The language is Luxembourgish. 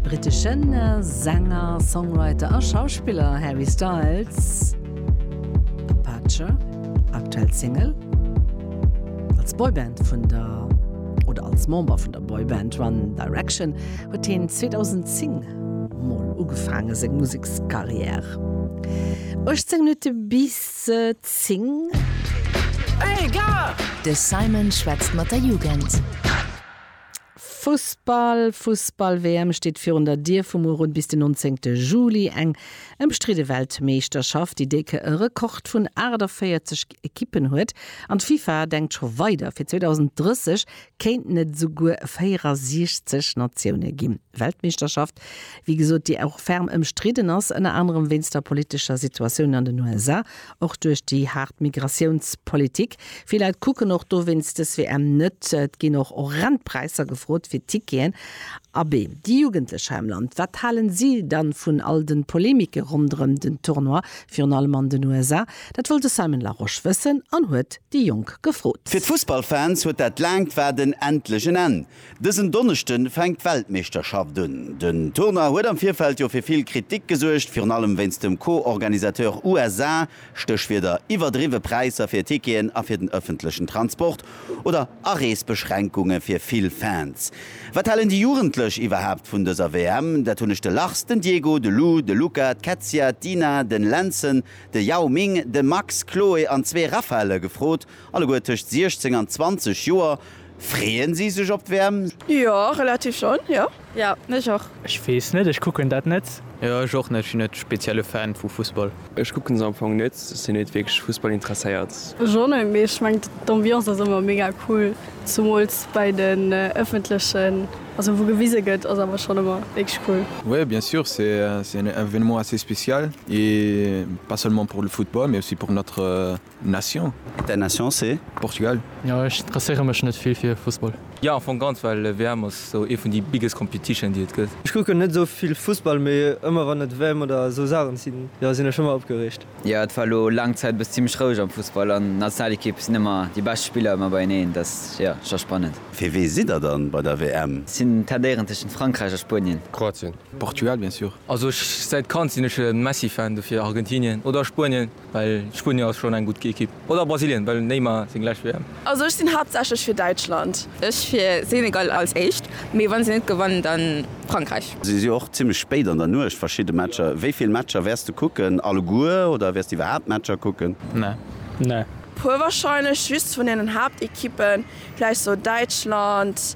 Briteschen Sänger, Songwriter a Schauspiller Harry Styles, Apache, aktuell Single, als Boyband vun der oder als Member vun der Boyband One Direction huet hien 2010 mol ugefaange seng Musekscarrière. 18 Minutte bis 10. De Simon schwätzt mat der Jugend. Fussball, Fussball-WM steet virun der Dier, vu muer un bis den 19 Juli eng ëmstridde Weltmeeschterschaft, déi décke Rekord vun 48 Ekippen huet. An d'FIFA denkt scho weider, fir 2030 kéinten et esouguer 64 Natioune ginn. Weltmeeschterschaft, wéi gesot, déi och ferm ëmstridden ass, ënner anerem wéinst der politescher Situatioun an den USA Och duerch déi haart Migratiounspolitik. Vill Leit kucken och dowéinst dës WM net. Et ginn och horrend Präisser gefrot fir Ticketen. Abee, déi Jugendlech hei am Land, wat halen si dann vun all den Polemike ronderëm den Tournoi, virun allem an den USA? Dat wollt de Simon Larosche wëssen an huet déi Jonk gefrot. Fir d'Fussballfans huet dat laangt Waarden endlech en Enn. Dësen Donneschde fänkt d'Weltmeeschterschaft un. Den Tournoi huet am Virfeld jo fir vill Kritik gesuergt, virun allem wéinst dem Co-Organisateur USA, Stéchwierder iwwerdriwwe Präisser fir Ticketen a fir den ëffentlechen Transport oder Areesbeschränkunge fir vill Fans. Wat halen déi Jugendlech iwwerhaapt vun dëser WM? Dat hunn ech de Lars, den Diego, de Lou, de Luca, d'Kätzia, d'Ina, den Lenzen, de Yao Ming, de Max, Chloe an zwee Raphaëlle gefrot. Alleguer tëscht 16 an 20 Joer. Freeën si sech op d'Wäerm? Jo, relativ schonn, jo. Jo, ech och. Ech weess net, ech kucken dat net. Jo, ech och net. Ech sinn net spezielle Fan vu Fussball. Ech kucken se am Fong net. Ech sinn net wierklech Fussball interesséiert. Ech och net, mee ech mengen d'Ambiance ass ëmmer mega cool, zumools bei den ëffentlechen, also wou gewise gëtt, ass awer schonn ëmmer wierklech cool. Oui bien sûr, c'est un événement assez spécial et pas seulement pour le football mais aussi pour notre. Nation? Däin Nation se? Portugal. Jo ech interesséiere mech net vill fir Fussball. Jo am Fong ganz, well WM ass sou ee vun déi biggest competition déi et gëtt. Ech kucken net sou vill Fussball, mee ëmmer wann et WM oder sou Saachen sinn, jo sinn ech ëmmer opgereegt. Jo et war elo laang Zäit bes zimmlech roueg am Fussball an Nationalequipe sinn ëmmer déi bescht Spiller ëmmer beieneen, dat ass jo scho spannend. Fir wee sidd der dann bei der WM? Sinn tendéieren tëschent Frankräich a Spuenien. Kroatien. Portugal bien sûr. Also ech säit Kand sinn ech e Messi Fan, dofir Argentinien oder Spuenien. Well Spuenien ass schon eng gudd Ekipp. Oder Brasilien, well Neymar seng lescht WM. Also ech sinn haaptsächlech fir Däitschland. Ech fir Senegal als éischt, mee wann se net gewannen dann Frankräich. Si si och zimmlech spéit an der Nuecht, verschidde Matcher. Wéi vill Matcher wäers de kucken? Alleguer oder wäers de iwwerhaapt Matcher kucken? Nee. Puer warscheinlech, just vun den Haaptekippen, vläicht sou Däitschland,